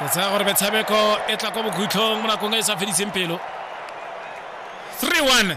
ke tsaya gore metshameko e tla kwa bokhutlhong mo nakong e e sa fediseng pelo 3-1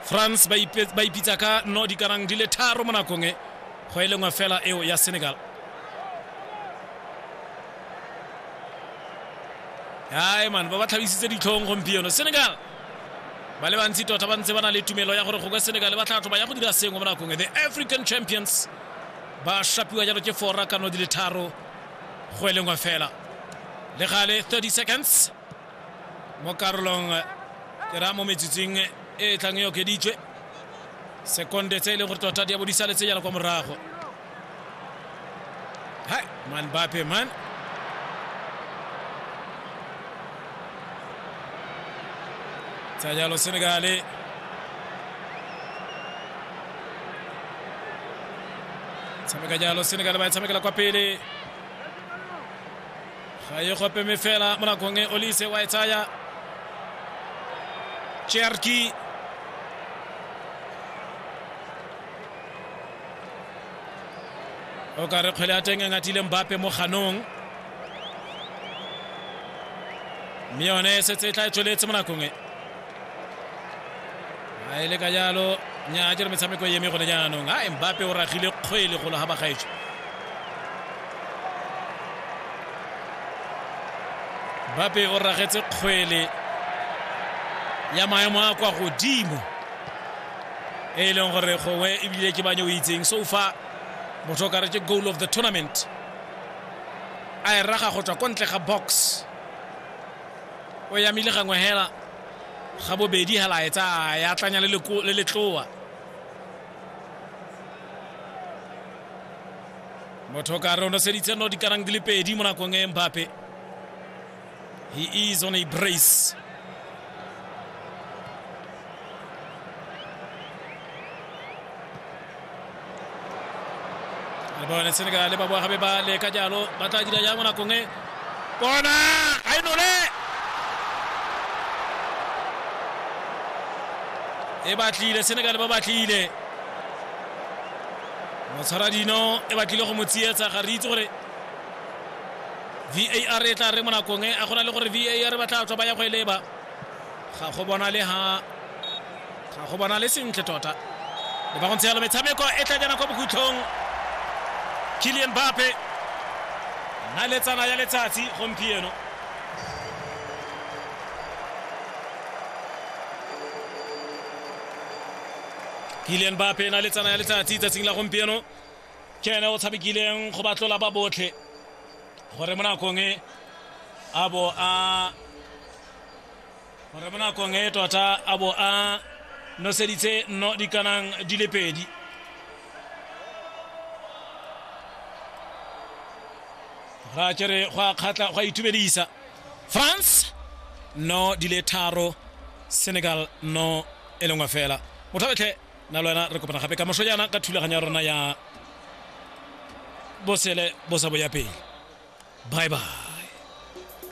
france ba ipitsa ka no dikanang di le tharo mo nakong e go e lengwe fela eo ya senegal ae man ba ba tlhabisitse ditlhong gompieno senegal ba le bantsi tota ba ntse ba na le tumelo ya gore go ka senegale ba tlatho ba ya go dira sengwe mo nakong the african champions ba shapiwa jalo ke fora kano di le tharo go e lengwe fela le gale 30 seconds mo karolong ke raya mo metsotsing e e tlang e okeditswe sekonde tse e leng gore tota di ya bo di saletse jalo kwa morago Hai, man Mbappe man. Tsa jalo Senegale. Tshameka jalo Senegale ba e tshamekela kwa pele. Ga e gope me fela mo nakong e Olise wa e tsaya. Cherki o ka re kgwele ya teng e ngatile mbape mo ganong mme yone e setse e tla e tsweletse mo nakong e a e le ka jalo nya a jere metshameko e eme gone jaanong a mbape o ragile kgwele golo ga bagaetso mbape o ragetse kgwele ya maemo a kwa godimo e e leng gore gongwe ebile ke banye o itseng so fa motho o kare ke goal of the tournament a e raga go tswa ko ntle ga box o yamile gangwe hela ga bobedi hela a e tsaya ya tlanya le letloa motho o kare o noseditse no dikarang di le pedi mo nakong e mbape He is on a brace. le bone senegale ba boa gabe ba leka jalo ba tla dira jang mo nakong e bona ga e nole e batlile senegale ba batlile motshwaradino e batlile go mo tsietsa ga re itse gore var e tla re mo nakong e a go na le gore var ba tla tswa ba ya go e leba ga go bona le ha ga go bona le sentle tota le ba go ntse yalo metshameko e tla jana kwa bokhutlhong kilian bape na letsana ya letsatsi gompieno kilian bape na letsana ya letsatsi tsatsing la gompieno ke ene o tshamekileng go batlola ba botlhe gore mo nakong e a bo a gore mo nakong e tota a bo a noseditse nno di kanang di le pedi ra kere go a kgatla go a itumedisa france no di le tharo senegal no e lengwe fela motho betlhe nna le wena re kopana gape ka moso jaana ka thulaganyo ya rona ya bosele bo sa boya pele bye bye